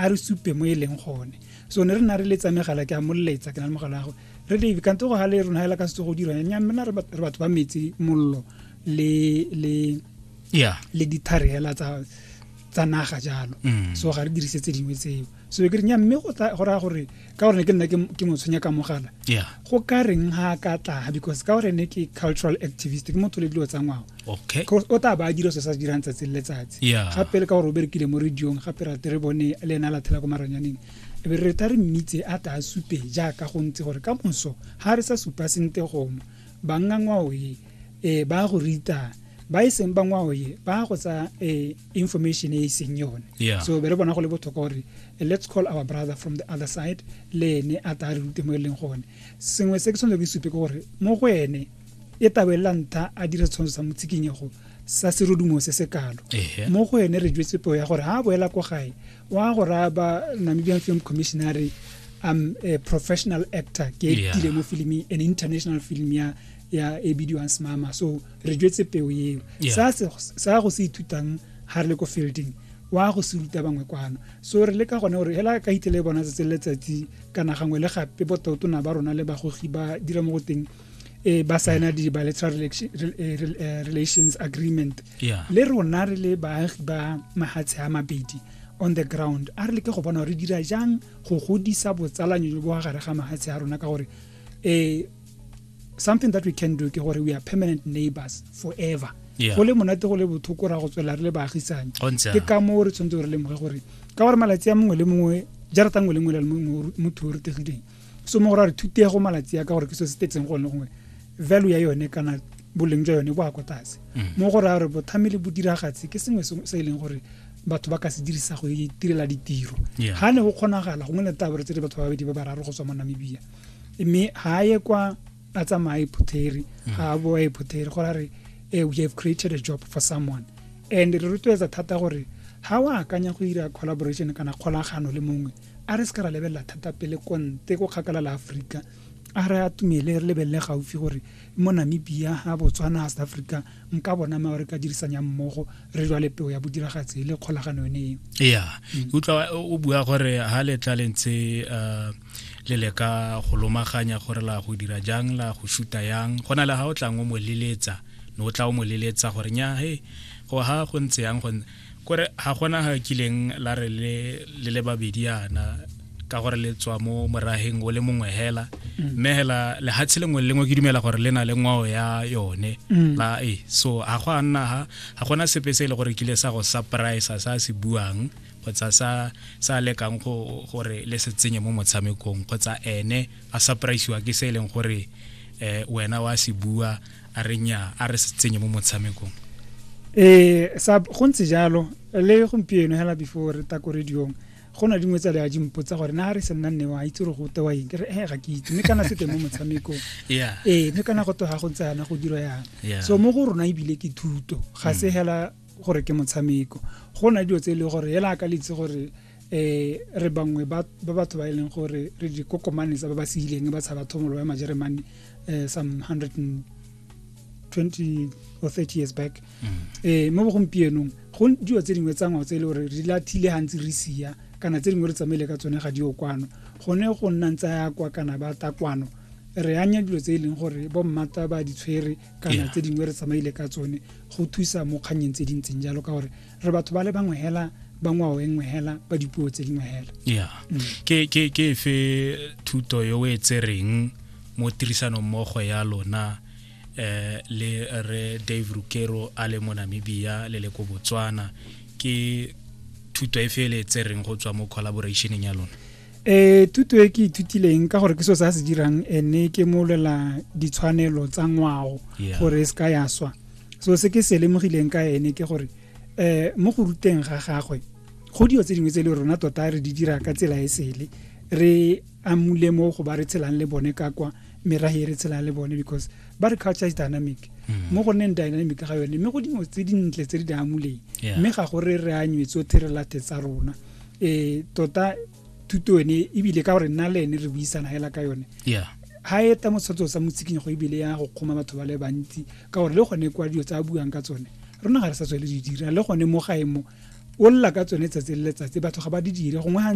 a re supe mo e leng gone so ne re na re letsa megala ke a moletsa ke na le mogala gago re dave kante go gale rona hela ka setso go dira nya mmena re batho ba metsi mollo le le yeah le dithare hela tsa tsa naga jalo mm. so ga re dirise tse dingwe tseo so ke re nya mme go raya gore ka gore ne ke nna ke mo tshwenya ka mogala go ka reng ha ka tla because ka gore ne ke cultural activist ke motho le dilo tsa ngwao o tla ba a dira se sa dirang tsatsi le letsatsi gape le ka gore o berekile mo radiong gape rate re bone le ena a lathela ko maranyaneng e be re ta re mmitse a tla a supe jaaka go ntse gore ka moso ga re sa supa sente gongwe bangangwaoe e ba go rita ba e seng bangwao ye ba go tsa eh, information e e seng yone yeah. so be re bona go le botlhokwa gore eh, let's call our brother from the other side le ene a ta re rute mo e leng gone sengwe se ke tshwanetse ke supe ke gore mo go ene e tabelela ntha a dira tshwantsho sa motsikinyego sa serodumo se se kalo mo go ene re jwetse peo ya gore ga a boela ko gae wa go raya ba namibian film commissionary um a professional actor ke yeah. mo filming an international film ya ya e bidiwang smama so re jwetse peo eo sa go se ithutang ga re le ko fielding wa go se ruta bangwe kwano so re le ka gone gore hela ka itele bona tsatsi letsatsi kana gangwe le gape bototona ba rona le bagogi ba dira mo go teng e ba saena di bilateral eh, eh, relations agreement le rona re le baagi ba mahatshe a mabedi on the ground a re leke go bona gore re dira jang go godisa botsalanyo jo bo gare ga mahatshe a rona ka gore um something that we can do ke gore we are permanent neighbors forever go le monate go le bothoko ra go tswela re le baagisane ke ka moo re tshwanetse re lemoge gore ka gore malatsi a mongwe le mongwe jarata nngwe le nngwe le mongwe motho o retegileng so mo gore a re thutego malatsi a ka gore ke se se tetseng gone gongwe value ya yone kana boleng jwa yone bo a kwa tlase mm. mo gore a re bothami le bodiragatsi ke sengwe se e leng gore batho ba ka se dirisa go itirela ditiro ga ne go kgonagala gongwe le tabore tse di batho ba babedi ba bararo go tswa mo namibia mme ha ye kwa a tsamaye phutheri mm. ha a boe phutheri go re eh, we have created a job for someone and re rotloetsa thata gore ha wa akanya go ira collaboration kana kgolagano le mongwe a re se ka ra lebelela thata pele konte go kgakala la aforika a re a tumele re lebelele gaufi gore mo namibia ha botswana a south africa nka bona ma re ka dirisanyang mmogo re jwale peo ya bodiragatsi le kgolagano yone eo ya mm. utlwa o bua gore ha letla le ntse uh, le le ka go lomaganya gore la go dira jang la go shuta yang go na le ga o tlang o mo leletsa ne o tla o mo leletsa gore nya he go ha go ntse yang go kore ga gona ga kileng la re le le babedi yana ka gore le tswa mo morageng o le mongwe hela mm. mme hela lehatshe lengwe le lengwe ke dumela gore le na le ngwao ya yone mm. la e so ga go a nna ga gona sepe se e le gore kile sa go surprise sa se buang kgotsa sa sa lekang go gore le se tsenye mo motshamekong kgotsa ene a surpriseiwa ke se e leng gore eh wena wa se bua a re nya a re se tsenye mo motshamekong eh sa go ntse jalo le gompieno hela before re ta ko radiong go na dingwe tsa le a di mpotsa gore na re se nna nne wa itse gore go tewa eng ke re eh ga ke itse mme kana se teng mo motshamekong eh mme kana go twa ga go ntse yana go dira yana so mo go rona ebile ke thuto ga se hela gore ke motshameko go na dilo tse e le gore ela a ka litse gore eh re bangwe ba batho ba e leng gore re dikokomane tsa ba ba se ileng ba tshaba thomolo ya majeremane um some hundred and twenty or thirty years back um mo bogompienong go dilo tse dingwe tsa ngwao tse e le gore re lathile gantsi re sia kana tse dingwe re tsamaile ka tsone ga di okwano gone go nna ntsa ya kwa kana ba takwano re anya dilo tse e leng gore bo mmata ba ditshwere kana tse dingwe re tsamaile ka tsone go thusa mo kgannyeng tse dintseng jalo ka gore re batho ba le bangwe hela ba ngwao e nngwe hela ba dipuo tse dingwe hela ya mm. ke ke ke fe thuto yo e tsereng mo tirisanong mmogo ya lona eh le re Dave Rukero a le mo Namibia le le ko Botswana ke thuto e fe le tsereng go tswa mo collaborationeng ya lona e thuto e ke ithutileng ka gore ke so se a se dirang e ne ke molela ditshwanelo tsa ngwao gore e se ka ya swa so se ke se lemogileng ka ene ke gore um mo go ruteng ga gagwe go dio tse dingwe tse le rona tota re di dira ka tsela e sele re amule mo go ba re tshelang le bone ka kwa merage e re tshelang le bone because ba re culture is dynamic mm. mo go nneng dynamic ga yone mme go dingwe tse dintle tse di di amuleng mme ga gore re anywetse o therelate tsa rona eh tota thuto ene ebile ka gore nna le ene re buisana hela ka yone yeah ha e ta motshatso sa motsikinyo go ebile ya go kgoma batho ba le bantsi ka gore le gone kwa dilo tsa a buang ka tsone rona ga re sa tswele di dira le gone mo gae mo o lla ka tsone tsatsi le letsatsi batho ga ba di dire gongwe